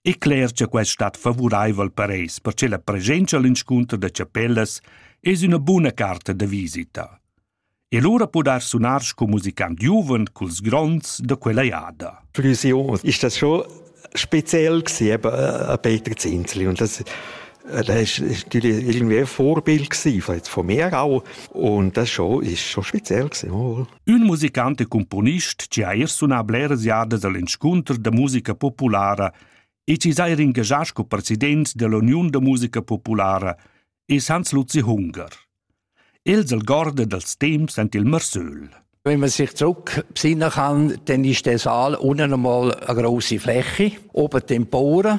e cler cha quest stat favuraivel per eis perche la presenza all'inscunter da chapellas es üna buna carta da visita. E lura podar sunar sco musicant giuven culs gronds da quella jada. Für unsere Jungs ist das schon speziell gewesen, eben äh, Peter Zinzli. Und das der ist, ist natürlich irgendwie ein Vorbild gewesen, von, von mir auch. Und das schon, ist schon speziell gewesen. Ün musicant e cumponist chi ha eir sunà bleras jadas al inscunter da musica populara e chi s'ha eir ingagià sco president dell'Uniun da musica populara es Hans Luzi Hunger. Els algorda dals temps ant il Marsöl. Wenn man sich zurückbesinnen kann, dann ist der Saal unten einmal eine grosse Fläche, oben Tempore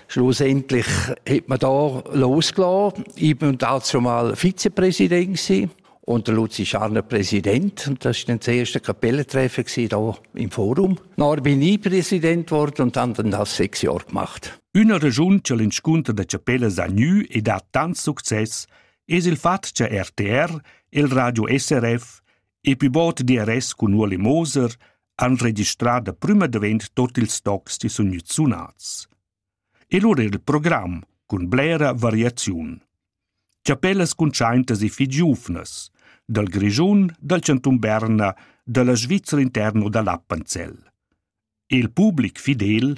Schlussendlich hat man da losgelassen. Ich bin dazu mal Vizepräsident gewesen. Und der Luzi Scharner Präsident. Und das war dann das erste Kapellentreffen hier im Forum. Dann bin ich Präsident geworden und habe dann das sechs Jahre gemacht. Üna regiun che l'inscunter da chapellas ha gnü e dat tant success es il fat cha RTR, il Radio SRF e pivot DRS cun Ueli Moser han registrà da prüma davent tot ils tocs chi sun gnüts sunats. E lura il program cun blera variaziun. Chapellas cuntschaintas e fich giuvnas, dal Grischun, dal Chantun Berna, dalla Svizra interno da l'Appenzell. Il public fidel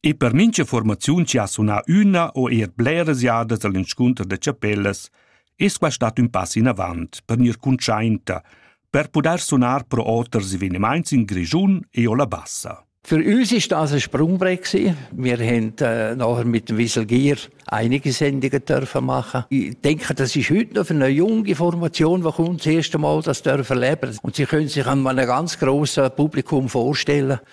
E per mincha formaziun chi ha sunà üna o eir bleras jadas al inscunter da chapellas es quai stat ün pass inavant per gnir cuntschainta, per pudair sunar pro oters evenimaints in Grischun e o la Bassa. Für uns ist das ein Sprungbrett gewesen. Wir haben äh, nachher mit dem Wieselgier einige Sendungen dürfen machen. Ich denke, das ist heute noch für eine junge Formation, die kommt, das erste Mal das dürfen leben. Und sie können sich einem einem ganz grossen Publikum vorstellen.